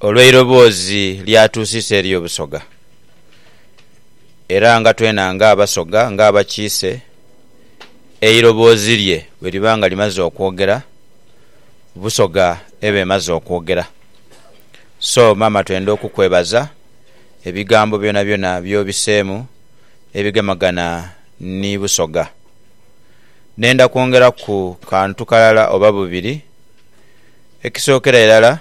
Olw'eiroboozi ly'atuusisa eri Obusoga, era nga twena nga Abasoga, nga abakiise, eiroboozi lye bwe liba nga limaze okwogera, Busoga eba emaze okwogera. So maama twenda okukwebaza ebigambo byonabyona by'obiseemu ebigemagana ni Busoga. Nenda kwongeraku kantu kalala oba bubiri. Ekisookera irala,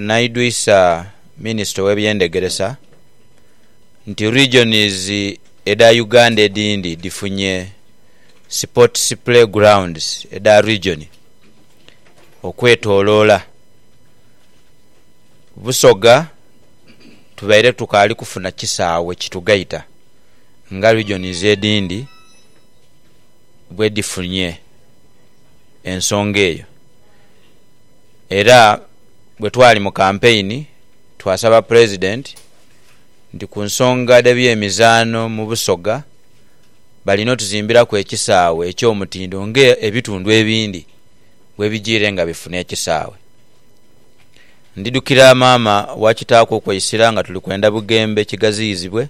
naidhwisa Minisita ow'ebyendegeresa nti Regions edha Uganda edhindi dhifunye Sports Play Grounds edha Region okwetoloola. Busoga tubaire tukaali kufuna kisaawe kitugaita nga Regions edhindi bwedhifunye. ensonga eyo era bwe twali mu kampeyini twasaba Pulezidenti nti ku nsonga dh'ebyemizaano mu Busoga balina otuzimbiraku ekisaawe eky'omutindo ng'ebitundu ebindi bwebijiire nga bifuna ekisaawe. Ndidhukira maama wa kitaaku okweisira nga tuli kwenda Bugembe kighaziyizibwe,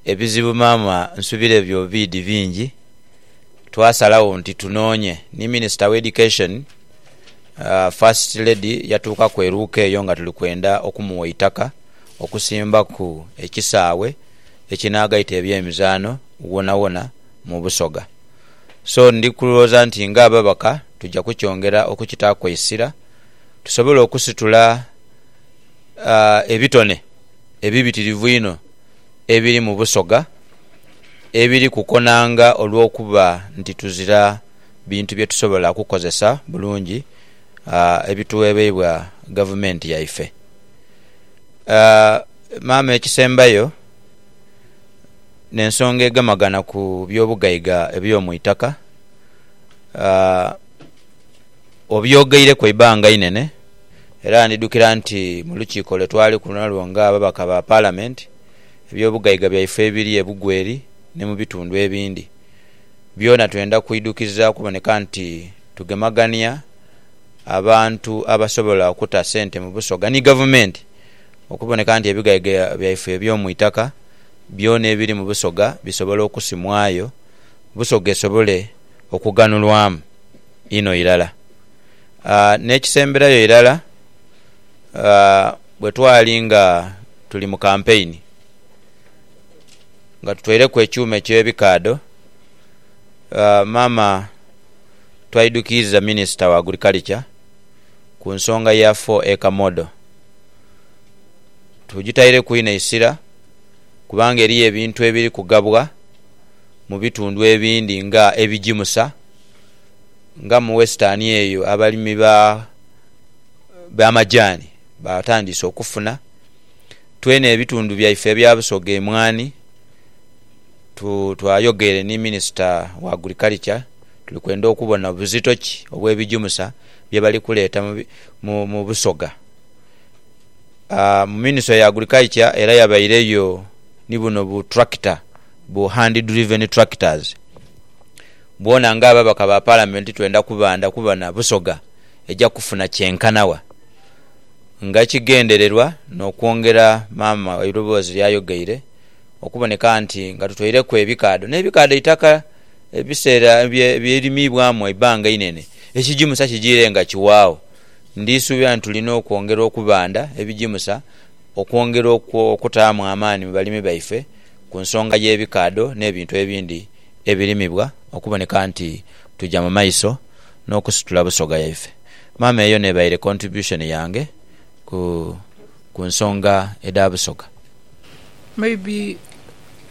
ebizibu maama nsubira ebyo biidhi bingi. twasalagho nti tunoonye ni Minisita w'Education, First Lady yatuukaku e Luuka eyo nga tuli kwenda okumuwa eitaka okusimbaku ekisaawe ekinaagaita ebyemizaano wonawona mu Busoga. So ndi kulwooza nti ng'ababaka tuja kukyongera okukitaaku eisira tusobole okusitula ebitone ebibitirivu einho ebiri mu Busoga. ebiri ku konanga olw'okuba nti tuzira bintu bye tusobola kukozesa bulungi ebitughebeibwa gavumenti yaife. Maama ekisembayo n'ensonga egemagana ku by'obugaiga eby'omu itaka obyogeireku eibanga inhenhe era ndidhukira nti mu lukiiko lwe twaliku nalwo ng'ababaka ba palamenti... Eby'obugaiga byaife ebiri e Bugweri ni mu bitundu ebindi byona twenda kuidhukiza kuboneka nti tugemagania abantu abasobola okuta sente mu Busoga ni Gavumenti okuboneka nti ebigaiga byaife eby'omu itaka byona ebiri mu Busoga bisobola okusimwayo Busoga esobole okughanulwamu inho irala. N'ekisemberayo irala, Bwe twali nga tuli mu kampeyini, nga tutweireku ekyuma eky'ebikaadho, maama twaidukiiriza minisita wa Agurikalica ku nsonga ya Four Acre Model. Tugitaireku inho eisira kubanga eriyo ebintu ebiri kugabwa mu bitundu ebindi nga ebigimusa, nga mu western eyo abalimi ba... ba majaani baatandiise okufuna. Twena ebitundu byaife ebya Busoga emwaani twayogeire ni minisita wa Agriculture tuli kwenda okubona buzito ki obw'ebijumusa bye bali kuleeta mu Busoga. Minisita wa Agriculture era yabaireyo ni buno bu tractor bu hand driven tractors bwona ng'ababaka ba Palamenti twenda kubandha kubona Busoga. eja kufuna kyenkana wa? Nga ekigendererwa n'okwongera maama eiroboozi ly'ayogeire okuboneka nti nga tutoireku ebikaadho n'ebikaadho eitaka ebiseera by'erimiibwamu eibbanga einene, ekigimusa kijiire nga kiwaagho. Ndisuubira nti tulina okwongera okubanda ebigimusa okwongera okutaamu amaani mu balimi baife ku nsonga y'ebikaadho n'ebintu ebindi ebirimibwa okuboneka nti tuja mu maiso. n'okusitula busoga yaife. Maama eyo n'ebaire contribution yange ku ku nsonga edha busoga. May be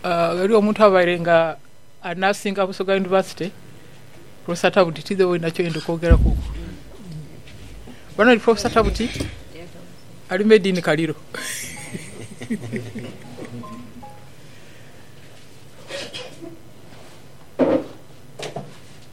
ghaligho omuntu abaire nga anaasinga Busoga University Professor Tabuti tidhi oina kyoyenda okwogeraku ku Bano ni Professor Tabuti ali made in Kaliro.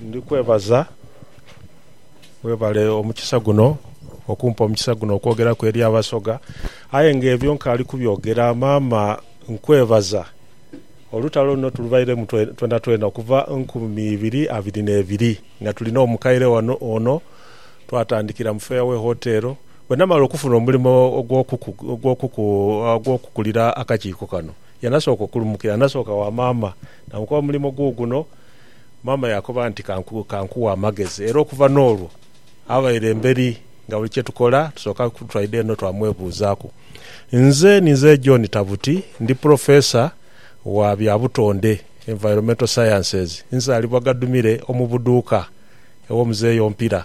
Ndi kwebaza, webale omukisa guno, okumpa omukisa guno okwogeraku eri Abasoga. Aye nga ebyo nkaali kubyogera, maama nkwebaza. Olutalo luno tulubairemu twenatwena okuva nkumi ibiri abiri n'ebiri nga tuli n'omukaire wano ono, twatandikira mu Fairway Hotel. Bwe namala okufuna omulimo ogw'okukulira akakiiko kano, yanasooka okulumukira, nasooka wa maama namukoba omulimo guuguno. Maama yaakoba nti, Ka nku, ka nkughe amagezi. Era okuva n'olwo abaire emberi nga buli kye tukola tusooka ku, twaidha eno twamwebuuzaaku. Nze ni nze John Tabuti, ndi pulofeesa wa bya butonde, Environmental Sciences. Nzaalibwa Gadumire omu Buduuka ew'omuzeeyi Ompira.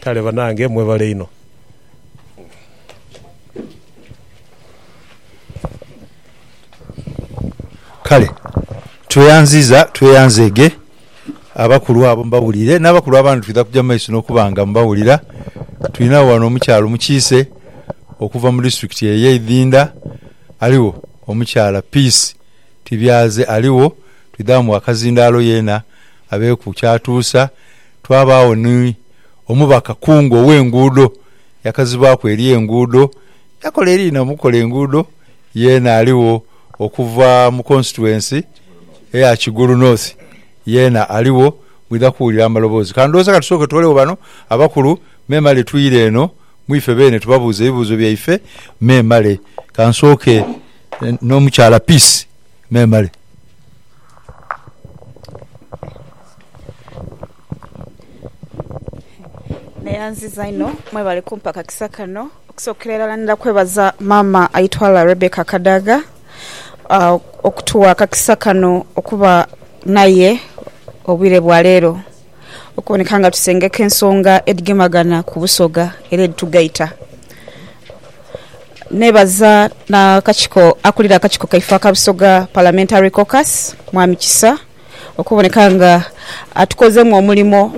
Kale banange mwebale inho. Kale tweyanziza tweyanzeege abakulu abo mbawulire n'abakulu abandi twidha kuja mu maiso n'okuba nga mbawulira. Twinagho ghano omukyala omukiise okuva mu disiturikiti eyo ey'e Idhinda, aligho omukyala Peace Tibyaze aligho, twidha ghamu Wakazindaalo yeena abeeku ky'atuusa. Twabaagho ni omubaka kungu ow'enguudo, yakazibaaku eri enguudo, yakola eriina mu kukola enguudo, yeena aligho. Okuva mu constituency eya Kigulu North yeena aligho, mwidha kuwulira amaloboozi. Ka ndhowooze ka tusooke twolegho bano abakulu memale twire eno mu ife beene tubabuuze ebibuuzo byaife memale. Ka nsooke n'omukyala Peace memale. Neyanziza inho mwebale kumpa kakisa kano. Okusokera irala ndidha kwebaza maama aitwala Rebecca Kadaga okutugha akakisa kano okuba naye obwire bwa leero okuboneka nga tusengeka ensonga edhigemagana ku busoga era edhitugaita. Nebaza akakiiko akulira akakiiko kaife aka busoga parliamentary caucus mwami Kisa. okuboneka nga atukozeemu omulimo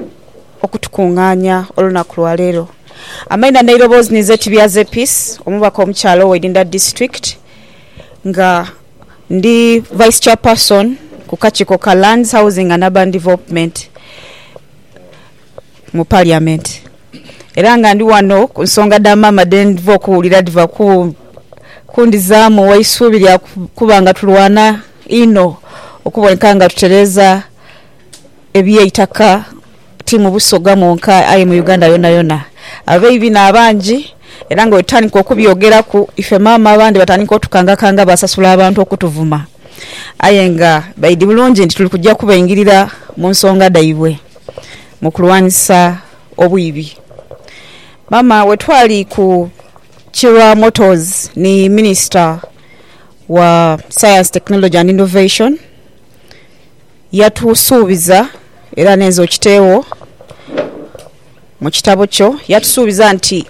okutukungaania olunaku lwa leero. Amaina n'eirobozi ninze Tibyaze Peace omubaka omukyala owa Idinda District nga ndi Vice Chairperson ku kakiiko ka Lands, Housing and Urban Development. mu Parliament era nga ndi ghano ku nsonga dha maama dhe ndhiva okuwulira dhiva kundhizaamu eisuubi lya kuba nga tulwana inho okuboneka nga tutereeza eby'eitaka ti mu Busoga mwonka aye mu Uganda yonayona. Abaibi n'abangi era nga bwetutandika okubyogeraku ife maama abandi batandika otukangakanga basasula abantu okutuvuma aye nga baidhi bulungi nti tuli kuja kubaingirira mu nsonga dhaibwe. mu kulwanisa obwibi. Maama bwe twali ku Kilwa Motors ni Minisita wa Science, Technology and Innovation, yatusuubiza era nenze okiteegho mu kitabo kyo, yatusuubiza nti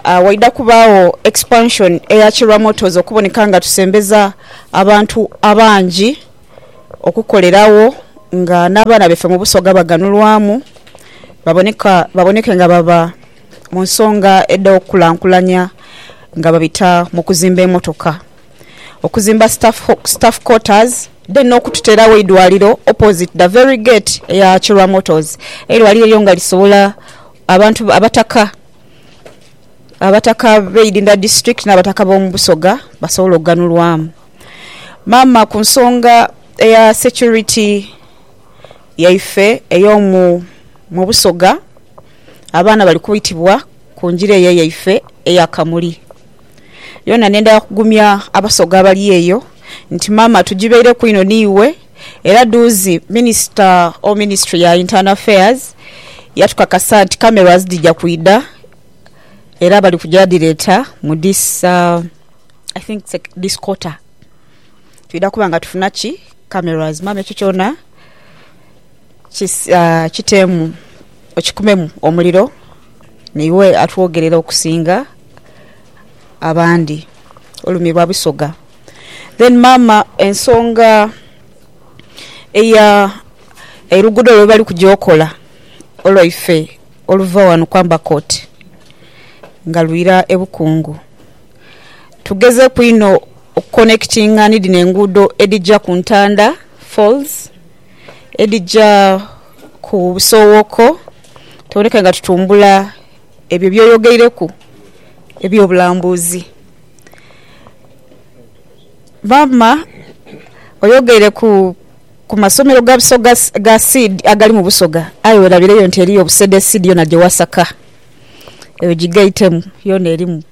waidha kubaagho expansion eya Kilwa Motors okuboneka nga tusembeza abantu abangi. okukoleragho nga n'abaana baife mu Busoga baganhulwamu baboneka, baboneke nga baba mu nsonga edh'okukulankulanya nga babita mu kuzimba emotoka, okuzimba staff quarters then n'okututeerawo eidwaliro opposite the very gate eya Kirwa Motors. Eidwaliro eryo nga lisobola abantu, abataka, abataka b'Idinda District n'abataka b'omu Busoga basobole okuganhulwamu. Maama ku nsonga eya security yaife eyomu mu busoga abaana bali kwitibwa ku njira eyo eyaife eya Kamuli yona nendha kugumya abasoga abali eyo nti maama tujibeireku inho niiwe era duuzi minisita or ministry ya internal affairs yatukakasa nti cameras dhija kwidha era bali kuja dhireta mu this I think this quarter twidha kuba nga tufuna ki cameras maama ekyo kyona kitemu okikumemu omuliro naiwe atwogerere okusinga abandi olumirwa busoga. Then maama ensonga eya oluguudo lwe bali kugya okola olwaife oluva ghano ku Amber Court nga lwira e Bukungu. Tugezeku inho okukonekitinga ni dhino enguudo edhija ku Ntanda Falls, edhija ku Busowoko tuboneka nga tutumbula ebyo byoyogeireku eby'obulambuzi. Maama oyogeire ku masomero ga Busoga, ga seed agali mu Busoga aye werabireyo nti eriyo Busedeside yona gyewasaka. Eyo gigaitemu yona erimu.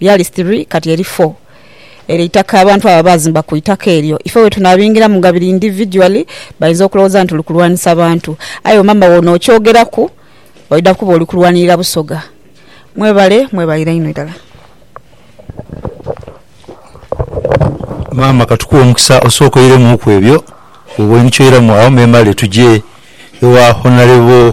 Lyali sitiri, kati eri fo. Eryo itaka, abantu abo abaazimba ku itaka eryo. Ife bwetunaabingiramu nga biri individually, bainza okulowooza nti tuli kulwanisa bantu. Aye wemamba bwonookyogeraku, oidha kuba oli kulwanirira Busoga. Mwebale, mwebalire inho irala. Maama katukuwe omukisa osooke oiremuuku ebyo bwoba oinhikyo oiramu agho memale tuje ewa Honorable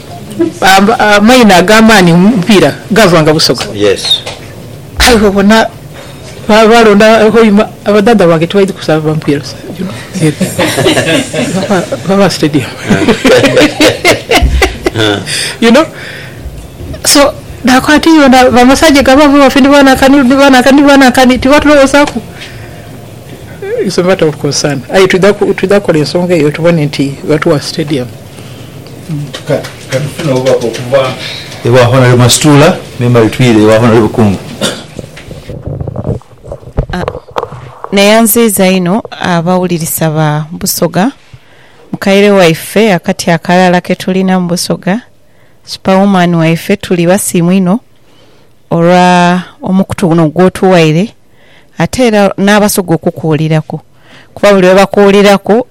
amaina ag'amaani mu mupiira gaavanga Busoga. Aye bw'obona baalonda Hoima, abadhaadha bange tibaidhi kusaba ba mupiira season eno, Baba Stadium. You know, so naakoba nti bona ba Masaje ga baaba baffe ni baanankani, ni baanankani, ni baanankani, tibatulowozaaku? It's a matter of concern. Aye twidha, twidha kukola ensonga eyo tubone nti batuwa Stadium. Katufune obubaka okuva ewa Honarebo Masituula me Mary Twire ewa Honarebo Kungu. Neyanziiza inho abawulirisa ba Busoga mukaire waife akati akalala ketulina mu Busoga Super Woman waife tuli basiimu inho olwa omukutu guno gwotuwaire ate era n'Abasoga okukuwuliraku kuba buli lwebakuwuliraku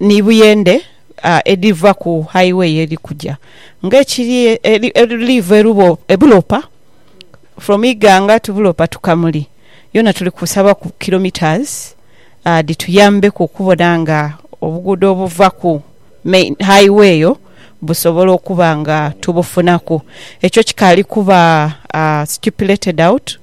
ni buyende edhiva ku highway edhi kuja nga ekiri edhiva e Bulopa from Iganga to Bulopa to Kamuli yona tuli kusaba ku kilometres dhituyambeku okubona nga obuguudo obuva ku main highway eyo busobola okuba nga tubufunaku. Ekyo kikaali kuba stipulated out.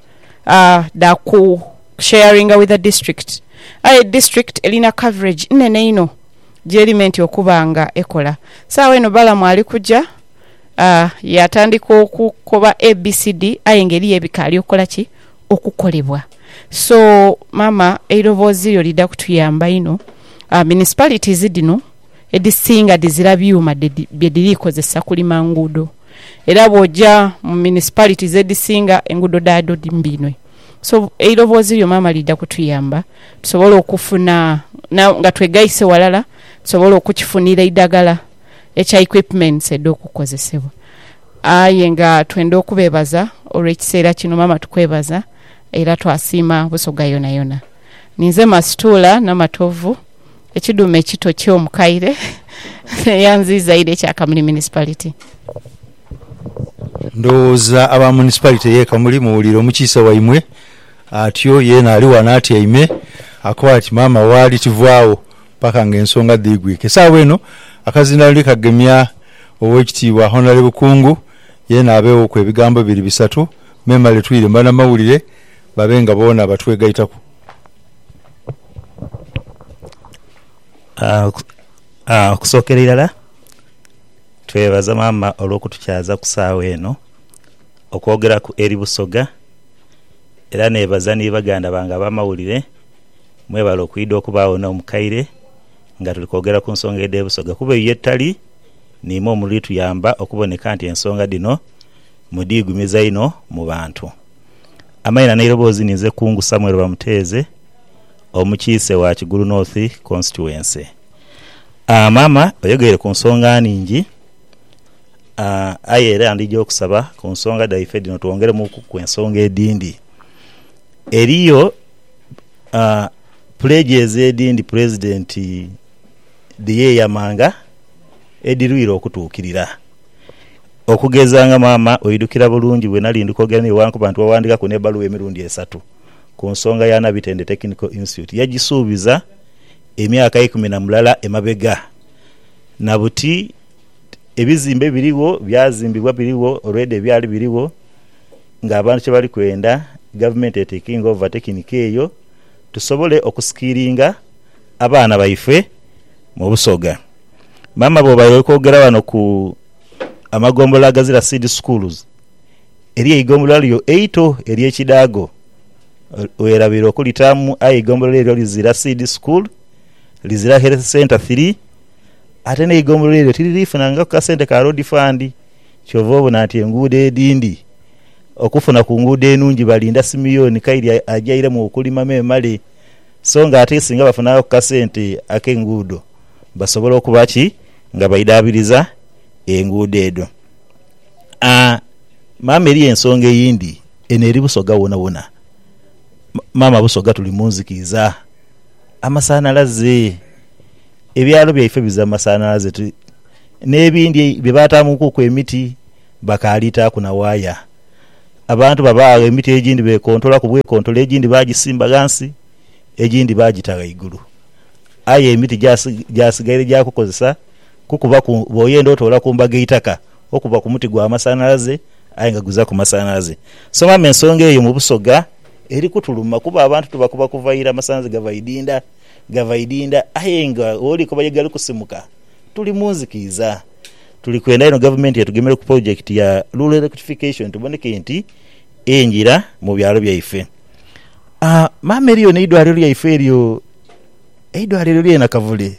dha ku sharinga with the district aye district elina coverage nhenhe inho gyeri meant okuba nga ekola. Sawa eno Balamu ali kuja yatandika okukoba ABCD aye nga eriyo ebikali okukola ki? Okukolebwa. So mama eirobozi lyo lidha kutuyamba inho. Municipalities dhino edhisinga dhizira byuma bye dhiri kozesa kulima nguudo. era bwoja mu municipalities edhisinga enguudo dhaadho mbi inho. So eiroboozi lyo maama liidha kutuyamba tusobole okufuna nga twegaise walala tusobole okukifunira eidhagala ekya equipments edhokukozesebwa. Aye nga twenda okubeebaza olw'ekiseera kino maama tukwebaza era twasiima Busoga yonayona. Ninze Mastuula Namatovu. Ekidhume ekito kyo mukaire neyanziiza ire ekya Kamuli Municipality. Ndowooza aba Municipality ye Kamuli muwulire omukiise waimwe atyo yeena ali wano atyaime akoba ati maama waali tivaagho paka nga ensonga dhiigwike. Saawa eno akazindaalo ndi kagemya Owekitiibwa Honourable Kungu yeena abeewooku ebigambo bibiri bisatu memale twire mu banamawulire babe nga boona batwegaitaku. Okusokera irala twebaza maama olwokutukyaza kusawa eno okwogeraku eri Busoga era nebaza ni baganda bange abamawulire mwebale okwidha okubagho nomukaire nga tuli kwogera kunsonga edhe Busoga kuba eyo yetutali nimwo mulituyamba okuboneka nti ensonga dhino mudhigumiza inho mubantu. Amaina n'eiroboozi ninze Kungu Samuel Bamuteeze omukiise wa Kigulu North Constituency. Aah maama oyogeire ku nsonga nhingi aah aye era ndhija okusaba ku nsonga dhaife dhino twongeremuuku ku ensonga edhindhi. Eriyo aah pledges edhindhi Pulezidenti dhe yeeyamanga edhirwire okutuukirira. Okugeza nga maama oidhukira bulungi bwe nali ndi kwogera naye bwankuba nti waghandikaku n'ebbaluwa emirundi esatu ku nsonga ya Nabitende Technical Institute yagisuubiza emyaka eikumi na mulala emabega na buti ebizimbe birigho byazimbibwa birigho already ebyali birigho ng'abantu kye bali kwenda Gavumenti etekinge over tekinika eyo tusobole okusikiringa abaana baife mu Busoga. Maama bwoba oli kwogera ghano ku amagombolola agazira Seed Schools, eriyo eigombolola lyo eito ery'e Kidaago werabira okulitaamu aye eigombolola eryo lizira Seed School, lizira Health Centre Three ate n'eigombolola eryo tiriri funangaku kasente ka Road Fund kyova obona nti enguudo edhindhi okufuna ku nguudo enungi balinda Simeon Kaire ajairemu okulima memale so nga ate singa bafunangaku kasente ak'enguudo. basobola okuba ki nga baidhaabiriza enguudo edho. Maama eriyo ensonga eyindi, eno eri Busoga wonawona. Maama Busoga tuli mu nzikiiza, amasanhalaze, ebyalo byaife bizibu amasanhalaze n'ebindi bye baataamukuku emiti bakaali taaku na waaya. Abantu baba agho emiti egindi beekontola ku bwekontole, egindi baagisimba ghansi, egindi baagita ghaigulu. Aye emiti gyasigaire gya kukozesa kukuba ku bwoyenda otoola ku mbaga eitaka okuba ku muti gwa masanhalaze aye nga guzaku masanhalaze. Somamu ensonga eyo mu Busoga eri kutuluma kuba abantu tubakuba kuva ira amasanhalaze gava idinda gava idinda aye nga woli koba ye gali kusimuka tuli mu nzikiiza. Tuli kwenda inho gavumenti etugemere ku polojekiti ya Rural Electrification tuboneke nti engira mu byalo byaife. Aa maama eriyo ne idwaliro lyaife eryo eidwaliro lye Nakavule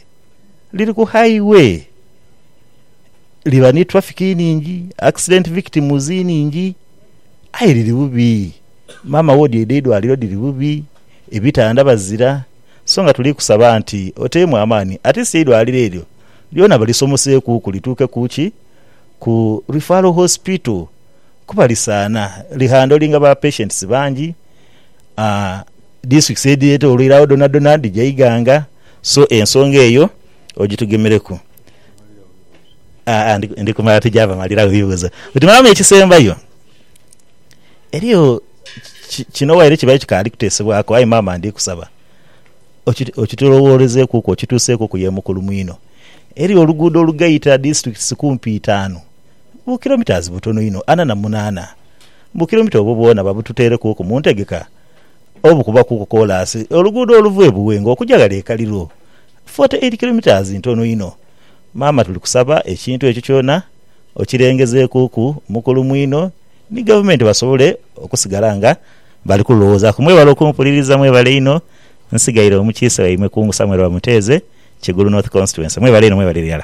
liri ku highway liba ni traffic iningi accident victims iningi aye liri bubi maama wodi edhe idwaliro dhiri bubi ebitanda bazira so nga tuli kusaba nti otemu amaani atleast eidwaliro eryo lyona balisomoseku ku lituuke ku ki ku referral hospital kuba lisaana lihandoolinga ba patients bangi. Districts edhitwoloire agho dhonadhona dhija Iganga so ensonga eyo ogitugemereku. Ndi kumala tija bamaliragho bibuuzo. Bwe tumalamu ekisembayo, eriyo kino waire kibaire kikaali kuteesebwaku aye maama ndi kusaba okitulowoorezeekuku okituuseekuku ye mukulu mwino. Eriyo oluguudo olugaita districts kumpi itaanu. bu kilometres butono inho ana na munaana. Bu kilomita obwo bwona babututeerekuuku mu ntegeka obukubakuuku koolaasi oluguudo oluva e Buwenga okuja ghale e Kaliro. Forty eight kilometres ntono inho. Maama tuli kusaba ekintu ekyo kyona okirengezeekuuku mukulu mwino ni Gavumenti basobole okusigala nga bali kululowoozaku. Mwebale okumpuliriza. Mwebale inho. Nsigaire omukiise waimwe Kungu Samuel Bamuteeze, Kigulu North Constituency. Mwebale inho mwebale irala.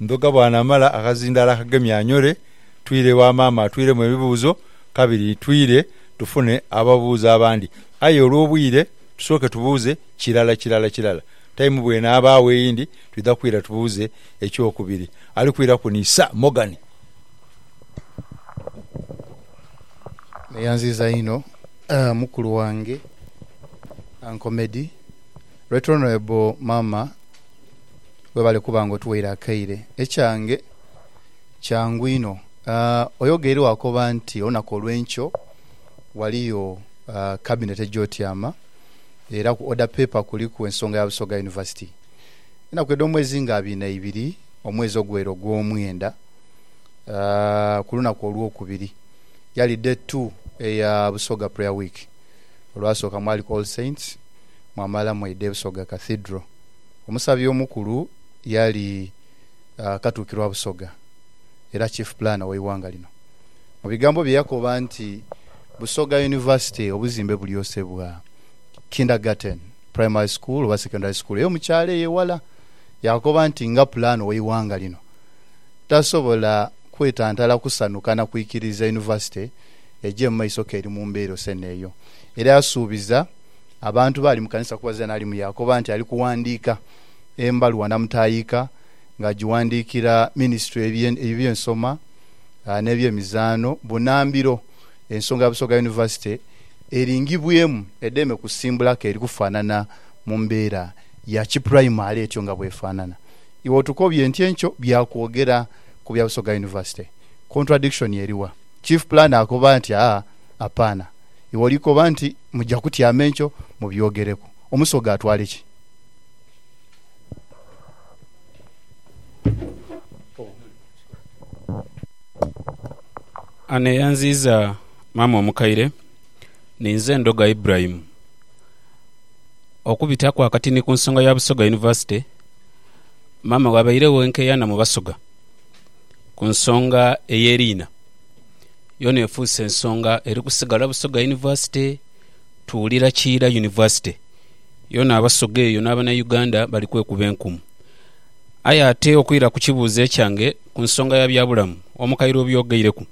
Ndhoga bw'anaamala akazindaalo akagemye anyole, twire ewa maama atwiremu ebibuuzo kabiri twire tufune ababuuza abandi. Aye olw'obwire tusooke tubuuze kirala kirala kirala. Tayimu bw'enaabaagho eyindi twidha kwira tubuuze ekyokubiri. Ali kwiraku ni Sir Morgan. Neyanziza inho mukulu wange Uncle Meddy Right honourable maama webale kuba nga otuwaire akaire. Ekyange kyangu inho oyogeire wakoba nti olunaku olwenkyo waliyo cabinet ejotyama era ku order paper kuliku ensonga ya Busoga University enaku edhomwezi nga abiri naibiri omwezi ogwere ogwomwenda kulunaku olwokubiri yali day two eya Busoga prayer week olwasoka mwaliku all saints mwamala mwaidha e Busoga Cathedral. Omusabi omukulu yali Katuukiro wa Busoga era Chief Planner w'eighanga lino. Mu bigambo bye yakoba nti, Busoga University obuzimbe bulyosebwa, Kindergarten, Primary School oba Secondary School eyo mu kyalo eyo ewala. Yaakoba nti, Nga Pulaano w'eighanga lino, tasobola kwetantala kusanhuka na kwikiriza Yunivasite egye mu maiso k'eri mu mbeera ose n'eyo. Era yasuubiza. abantu baali mu kanisa kubazira n'ali mu yaakoba nti ali kuwandiika embaluwa namutaayiika ng'agiwandiikira minisitule ey'ebyensoma n'ebyemizaano bunambiro ensonga ya Busoga Yunivasite eringibwemu edheeme kusimbulako eri kufaanana mu mbeera ya kipuraimale etyo nga bw'efaanana. Iwe otukobye nti enkyo bya kwogera ku bya Busoga Yunivasite. Contradiction eriwa? Chief Planner akoba nti, Aa, apaana. Iwe oli koba nti muja kutyama enkyo mubyogereku. Omusoga atwale ki? Ani eyanziiza maama omukaire? Ninze Ndhoga Ibrahim. Okubitaku akati ni ku nsonga ya Busoga University, maama bw'abairegho enkeyana mu Basoga ku nsonga ey'eriina. yona efuuse nsonga eri kusigala Busoga University tuwulira kiira University yona Abasoga eyo n'abanauganda bali kwekuba enkumu. Aye ate okwira ku kibuuzo ekyange ku nsonga ya byabulamu Omukaire obyogeireku.